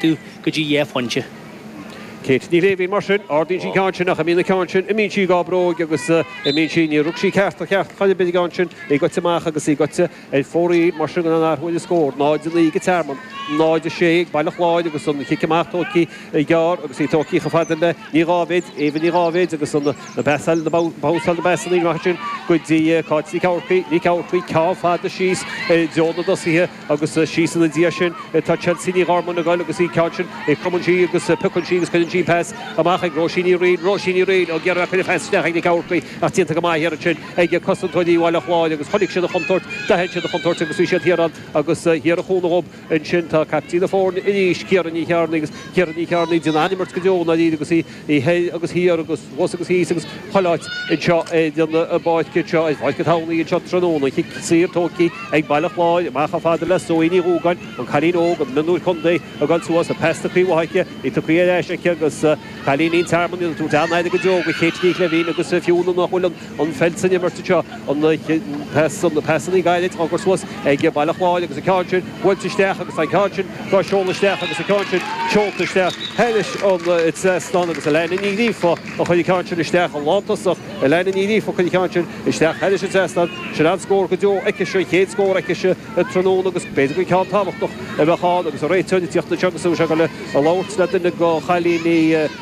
tú go dtí dhá phointe. Céit Ní Shléibhín Mar sin, ardaíonn sí ceann sin ach imíonn an ceann sin imíonn sí dhá bróig agus imíonn sí Níor rug sí ceart ná ceart ar chor ar bith ar an gceann sin í goite amach agus í goite ar fóraoil Mar sin gan aon athrú ar an scór, 0:09 ag Tearmann, 0:06 ag Baile Chláir agus an chic amach tógtha gearr agus í tógtha chomh fada le Ní Dháibhéid, Éabha Ní Dháibhéid agus an basail na basail na pasannaí maith sin go dtí Cáit Nic Eamharcaigh, Nic Eamharcaigh ceann fada síos i dtreo na dtosaithe. agus síos ina diaidh sin tá Chelsea Ní Ghormáin ag goil agus í ceann sin cromann sí agus piocann sí agus cuireann sí an pas amach ag Róisín Ní Riain, Róisín Ní Riain ó ag iarraidh a cuireadh pas isteach ag Nic Eamharcaigh ach déanta go maith thiar ansin ag cosantóirí Bhaile Chláir agus chonaic siad an chontúirt, d'aithin siad an chontúirt agus bhí siad thiar ann agus thiar a chúnamh dhób. Ansin tá caiptín na foirne arís, Ciara Ní Chearnaigh agus Ciara Ní Chearnaigh ag déanamh an-imirt go deo, i ndáiríre, agus í i thoir agus thiar agus thuas agus thíos agus chuile áit anseo ar an bpáirc anseo, ar Pháirc an Thamhnaigh anseo tráthnóna. Cic saor tógtha ag Baile Chláir, amach chomh fada le Zoe Ní Dhúgáin, an cailín óg an mionúir contae ag dul suas, an pas tugthaí uaithi aici, í tugthaí ar ais aici agus cailíní an Tearmainn ag tabhairt an-aire go deo do Kate Ní Ghlinn agus fiú nach bhfuil an an pheil san imirt anseo, an pas, na pasannaí gairid á gcur suas ag Baile Chláir agus an ceann sin buailte isteach agus an ceann sin á seoladh isteach agus an ceann sin seolta isteach thairis an trasnán agus Alannah Ní Ghríofa a chuir an ceann sin isteach, an lántosach Alannah Ní Ghríofa a chuir an ceann sin isteach thairis an trasnán. Sin an-scór go deo aicise, an chéad scór aicise an tráthnóna agus b'fhéidir gur ceann tábhachtach a bheadh ann agus an réiteoir ag tíocht anseo agus an bhfuil sé ag dul a labhairt le duine de chailíní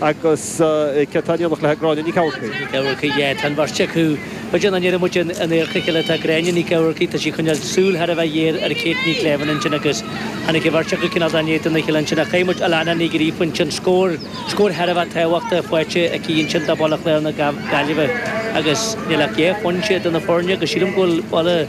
Agus céard tá in éineacht le Gráinne Nic Eamharcaigh? Eamharcaigh, yeah. Tá an bheirt acu, goite, an ndéarfaidh muid in adharca a chéile. Tá Gráinne Nic Eamharcaigh, tá sí ag coinneáil súil thar a bheith géar ar Kate Ní Shléibhín ansin agus tháinig an bheirt acu cineál in éadan a chéile ansin. Ach chaill muid Alannah Ní Ghríofa ansin, scór, scór thar a bheith tábhachtach faighte aici ansin do Bhaile Chláir na Gaillimhe agus níl ach dhá phointe idir na foirne agus sílim go bhfuil Baile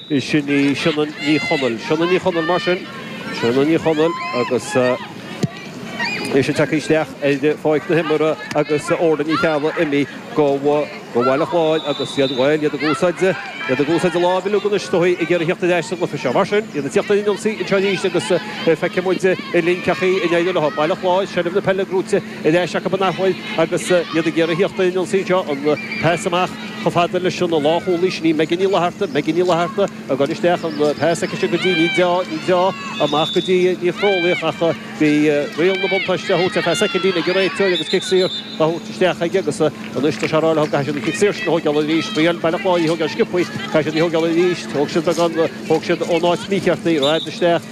Is sin í Sionainn Ní Chonaill. Sionainn Ní Chonaill mar sin. Sionainn Ní Chonaill agus í ag teacht isteach ar pháirc na himeartha agus Órla Ní Cheallaigh imithe do Bhaile Chláir agus iad, bhuel, iad ag úsáid, iad ag úsáid a láimhe uilig anois tabhaill ag iarraidh thíocht ar ais sa gcluiche seo. Mar sin, iad ag tíocht ar an ionsaí anseo arís agus feicfidh muid linn cén chaoi a n-éireoidh leo. Baile Chláir, seilbh na peile ag Rutte. Ar ais acu in athuair agus iad ag iarraidh thiocht ar an ionsaí seo, an pas amach chomh fada leis an lánchúlaí, sin í Megan Ní Fhlatharta, Megan Ní Fhlatharta ag goil isteach, an pas aici sin go dtí Ní Deá, Ní Deá amach go dtí Ní Chrualaoich ach bhí riail na buntáiste á thabhairt ar feadh soicindín ag an réiteoir agus cic saor á thabhairt isteach aige agus anois tá sé ag rá leo caithfidh siad an chic saor sin a thóigeáil arís, thriáil Baile Chláir í a thóigeáil sciobthaí, caithfidh siad í thóigeáil arís, thóg siad beagán, thóg siad ón áit mícheart í, rófhada isteach.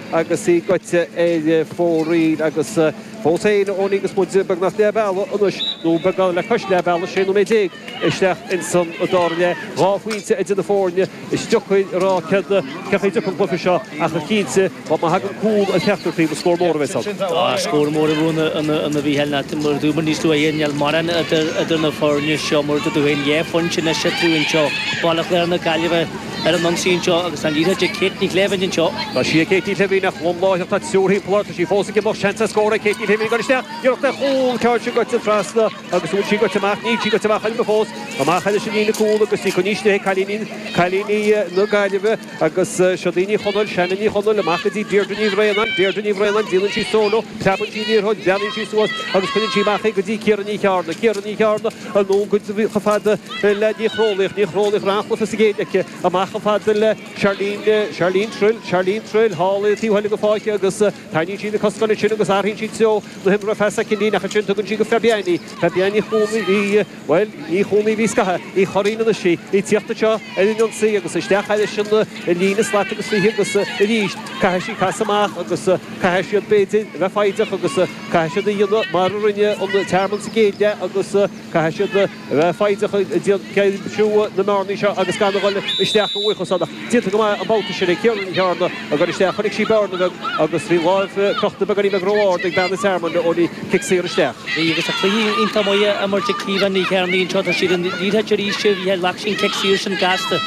agus í goite ar fóraoil, agus fós féin Eoin agus muid beagnach leath bealaigh anois, nó beagán le cois leath bealaigh, 16 nóiméad isteach ins an dara leath, dhá phointe idir na foirne, is deacair a rá céard céard a thiocfaidh uaidh seo ach cinnte má thagann cúl ar cheachtar taobh, scór mór a bheidh ann. Tá scór mór a bheidh ann a Mhichíl mar a dúramar níos luaithe níl mórán idir na foirne seo mar a dúirt tú féin, dhá phointe anois eatarthu anseo. Baile Chláir na Gaillimhe. ar an ionsaí anseo agus tá an liathróid ag Kate Ní Shléibhín anseo. Tá sí ag Kate Ní Shléibhín ach lom láithreach, tá triúr thimpeall uirthi, tá sí fós ag imeacht, seans ar scór ag Kate Ní Shléibhín ag dul isteach, iarracht ar chúl an ceann sin goite trasna agus an bhfuil sí goite amach, níl sí goite amach ainm fós, amach ar a sin í na cúl agus í chun níos nithe, cailíní, cailíní na Gaillimhe agus seo Shannon Ní Chonaill, Shannon Ní Chonaill, amach go dtí Deirdre Ní Bhraonáin, Deirdre Ní Bhraonáin, déanann sí solo, preabann sí an liathróid, breathnaíonn sí suas agus cuireann sí amach é go dtí Ciara Ní Cheárna, Ciara Ní Cheárna, Ar ndóigh, chomh fada le Ní Chróinín, Ní Chróinín ghlan chluas is a ghéill aici, amach chomh fada le Charlene, Charlene Trill, Charlene Trill thall i dtaobh eile na faiche agus teannann sí na coscáin ansin agus athraíonn sí treo na himeartha ar feadh soicindín ach ansin tugann sí go Fabienne, Fabienne Ní Chuana, í, bhuel, Ní Chuana a bhí scaitheamh, Uí Churraoin anois í, í ag tíocht anseo ar an ionsaí agus isteach arís an líne slat agus fiche agus arís caithfidh sí casadh amach agus caithfidh siad, b'fhéidir, a bheith foighdeach agus. Caithfidh siad a dhéanamh mar a rinne an Tearmann sa gcéad leath agus caithfidh siad a bheith foighdeach ag aimsiú na mbearnaí seo agus gan a dhul isteach i bhfaochasáin. Ach déanta go maith an babhta sin ag Ciara Ní Cheárna ag dul isteach. Chonaic sí bearna bheag agus bhí láimh crochta beagáinín beag ró-ard ag bean an Tearmainn, Eoin, bhí cic saor isteach. Bhí agus tá cluiche iontach maith á imirt ag Ciara Ní Cheárna anseo. Tá sí ar an liathróid arís, bhí an cic saor sin gasta.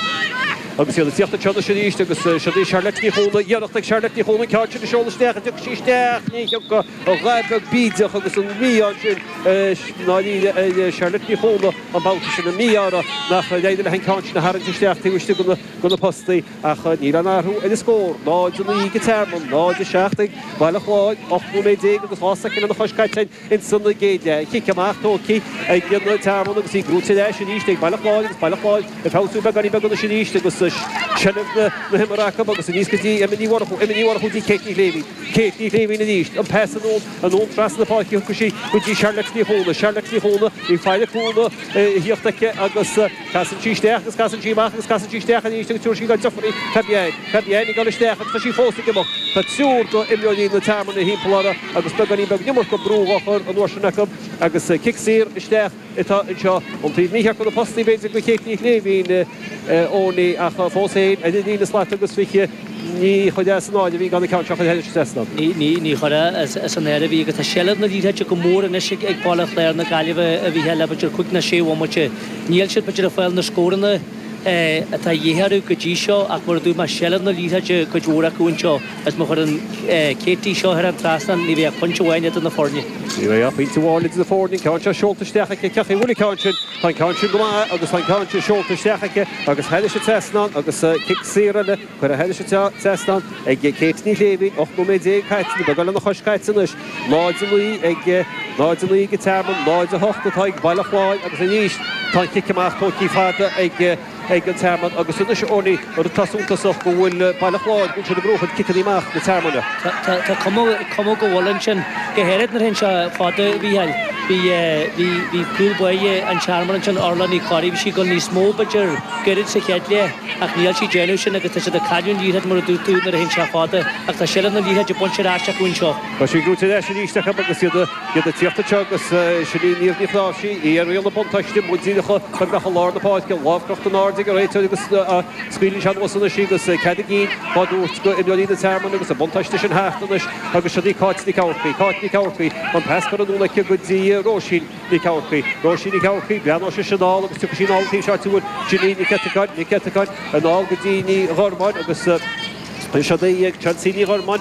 Agus iad ag tíocht anseo anois arís agus siúd í Charlotte Ní Chuana, iarracht ag Charlotte Ní Chuana an ceann sin a sheoladh isteach a d'fheuch sí isteach ní thiocfaidh an ghair beag bídeach agus an mí-ádh ansin ar Charlotte Ní Chuana an babhta sin an mí-ádh uirthi nár éirigh léi an ceann sin a tharraingt isteach taobh istigh de na postaí ach níl aon athrú ar an scór, 0-9 ag an Tearmann, 0-7 ag Baile Chláir, 18 nóiméad agus dhá soicind lena chois caite. insan gcéad leath, cic amach, tógtha ag an Tearmann agus í brúite ar ais arís ag Baile Chláir agus Baile Chláir ag feabhsú beagáinín beag anois arís agus seilbh na himeartha acu agus aníos go dtí Emma Ní Mhurchú, Emma Ní Mhurchú go dtí Kate Ní Shléibhín, Kate Ní Shléibhín arís, an pas anonn, anonn trasna na páirce tugann sí go dtí Charlotte Ní Chuana, Charlotte Ní Chuana, an bhfuil aon chúnamh ag tíocht aici agus. Casann sí isteach agus casann sí amach agus casann sí isteach arís agus tabharfaidh sí dá deirfiúr í. Fabienne, Fabienne ag dul isteach agus tá sí fós ag imeacht. Tá triúr d'imreoirí an Tearmainn thimpeall uirthi agus beagáinín beag an iomarca brú dhá chur an uair sin acu agus cic saor isteach atá anseo ón taobh mícheart de na postaí b'fhéidir do Kate Ní Shléibhín, Eoin, ach fós féin, ar an líne slat agus fiche. Ní chuirfidh as an áireamh í gan an ceann seo a chur thairis, a Desna. Ní chuirfidh as an áireamh í, agus tá seilbh na liathróide go mór anois ag Baile Chláir na Gaillimhe a bhí thar lear idir cúig ná sé bhomaite. Níl siad ag fáil na scóranna atá a dhíth orthu go dtí seo ach, mar a dúirt mé, seilbh na liathróide cuid mhór acu anseo agus má chuireann Katie seo thar an trasnán, ní bheidh ach pointe amháin idir na foirne. Ní bheidh ach pointe amháin idir na foirne, an ceann seo seolta isteach aici, ach caithfidh an bhfuil an ceann sin. Tá an ceann sin go maith agus tá an ceann sin seolta isteach aici agus thar ais an trasnán agus cic saor eile curtha thar ais an trasnán ag Kate Ní Shléibhín. 18 nóiméad caite, nó beagán lena chois caite anois, 0-9 ag 0-9 ag Tearmann, 0-8 atá ag Baile Chláir agus arís tá an cic amach tugtha fada ag. ag an tearmann agus anois an rud atá suntasach go bhfuil Baile Chláir buaite le gnóthú ciceanna amach na tearmainne. Tá cuma go bhfuil ansin. Go háirid nuair atá sé fada, Mhícheáil, bhí cúl baile an tearmainn ansin, Orla Ní Chorraidh, bhí sí ag goil níos mó, b'fhéidir, goirid sa chéad leath ach níl sí déanamh sin agus tá siad ag cailleadh an liathróid mar a dúirt tú nuair a théann sé fada ach tá seilbh na liathróide bainte ar ais acu anseo. Tá sí gnóite ar ais arís acu agus iad a. Iad ag tíocht ó dheas agus sin í Niamh Ní Chnáimhsí, í ar riail na buntáiste muid ag teacht go lár na páirce, lámh crochta in airde ag an réiteoir agus scaoileann sé anuas anois í agus cead a gcinn á thabhairt go imreoirí na Tearmann agus an buntáiste sin thart anois agus sin í Cáit Nic Eamharcaigh, Cáit Nic Eamharcaigh, an pas curtha anonn aici go dtí Róisín Nic Eamharcaigh, Róisín Nic Eamharcaigh, breathnóidh sise anall agus tiocfaidh sí anall an taobh seo ar gcúl sin í Nic Eiteagáin, Nic Eiteagáin, anall go dtí Ní Ghormáin agus sin í Chancey Ní Ghormáin,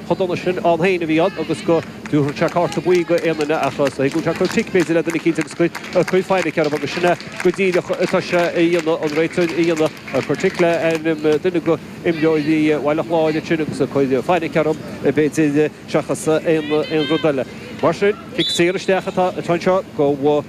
chomh dona sin ann féin a bhí ann agus go dtabharfadh sé cárta buí d'aon duine ach is dóigh go bhfuil sé ag cur tic, b'fhéidir, le duine eicínt agus ag cur fainic orthu agus sin é go díreach atá sé a dhéanamh, an réiteoir a dhéanamh, ag cur tic le ainm duine go imreoirí Bhaile Chláir ansin agus ag cur fainic orthu, b'fhéidir, seachas aon rud eile. Mar sin, cic saor isteach atá anseo go.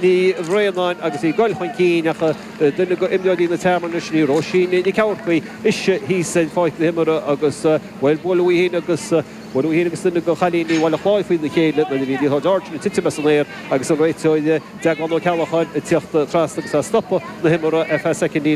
Ní Bhraonáin agus í ag goil chun cinn ach duine d'imreoirí na Tearmann anois, sin í Róisín Nic Eamharcaigh, ise thíos ar pháirc na himeartha agus bhuail buaileadh í féin agus buaileadh í féin agus duine de chailíní Bhaile Chláir faoina chéile nuair a bhí liathróid ard ag titim as an aer agus an réiteoir Deaglán Ó Ceallacháin ag teacht trasna agus ag stopadh na himeartha ar feadh soicind.